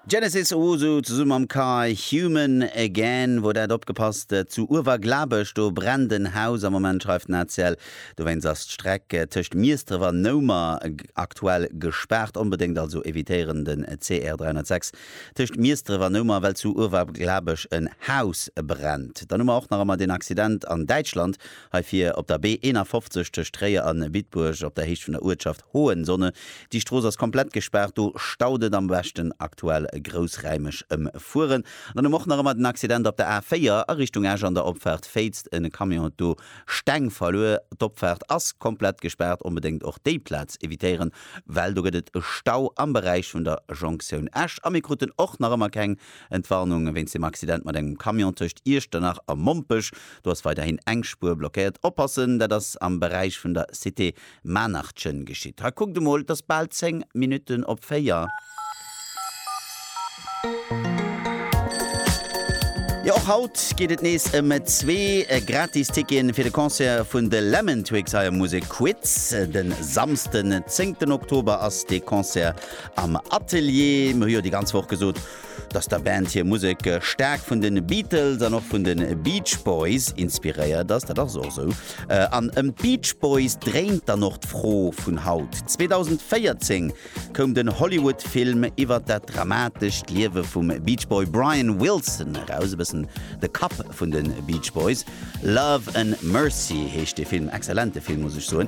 Genesis Owusu zesumme mam Char Human Again wor dat. Opgepasst, zu Uewerglabech do brennt en Haus am Moment, schreift den ACL. Dowéinst ass d'Streck tëscht Miesdref an Noumer aktuell gespaart. Onbedéngt also evitéieren den CR 306 tëscht Miesdref an Noumer, well zu Uewerglabech en Haus brennt. Dann hu mer och nach emmer deen Accident an Däitschland, hei vir op der B 51 tëscht Tréier a Bitburg op der Héicht vun der Uertschaft. Hohenzonne. Déi Strooss ass komplett gespaart, do staut et am beschten aktuell groussraimeg ëm Fueren. An dann hu mer och nach ëmmer den Accident op der A4 a Richtung Esch an der Opfaart Féitzt. E Camion huet do Steng verluer. D'Opfaart ass komplett gespaart, onbedéngt och déi Plaz evitéieren, well do gëtt et e Stau am Beräich vun der Jonktioun Esch. A mir kruten och nach ëmmer keng Entwarnung wéinst dem Accident mat engem Camion tëscht Iechternach a Mompech. Do ass weiderhin eng Spuer blockéiert. Oppassen, dat ass am Beräich vun der Cité Maannertchen geschitt. Ha kuckt emol, et ass bal 10 Minutten op 4. Jo, och haut geet et nees ëm zwee gratis Ticketen fir de Concert vun de Lemon Twigs hei am Musek Quiz. Den Samsden 10. Oktober ass dee Concert am Atelier. Mir hu jo déi ganz Woch gesot, dass der Band hir Musek staark vun de Beatles an och vun de Beach Boys inspiréiert ass, dat ass och esou. An ëm d'Beach Boys dréint dann och d'Fro vun haut. 2014 koum den Hollywood-Film iwwer dat dramatescht Liewe vum Beach Boy Brian Wilson eraus, e bëssen de Kapp vun de Beach Boys. Love and Mercy heescht dee Film, excellente Film muss ech soen.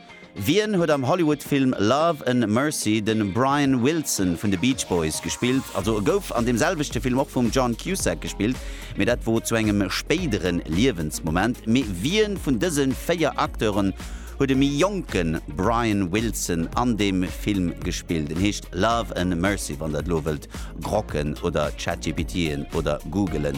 Wien huet am Hollywood-Film Love and Mercy de Brian Wilson vun de Beach Boys gespillt? Also e gouf an deem selwechte Film och vum John Cusack gespillt, mee dat wor zu engem spéidere Liewensmoment. Mee wien vun dëse véier Acteuren huet e méi jonke Brian Wilson an deem Film gespillt? En heescht Love and Mercy, wann der et elo wëllt grocken oder Chat-GPTen oder googelen.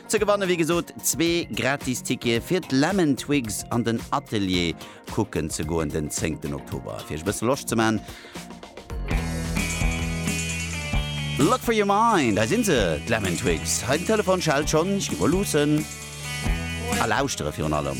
Ze gewanne wéi gesot zwee gratis Tickete fir d'Lemon Twigs an den Atelier kucken ze goen den 10 ten Oktober. Fir iech e bësse Loscht ze man. Luck for your mind, hei sinn se, d'Lemon Twigs. Hei den Telefon schellt schonn, ech gi mol luussen a lauschtere virun allem.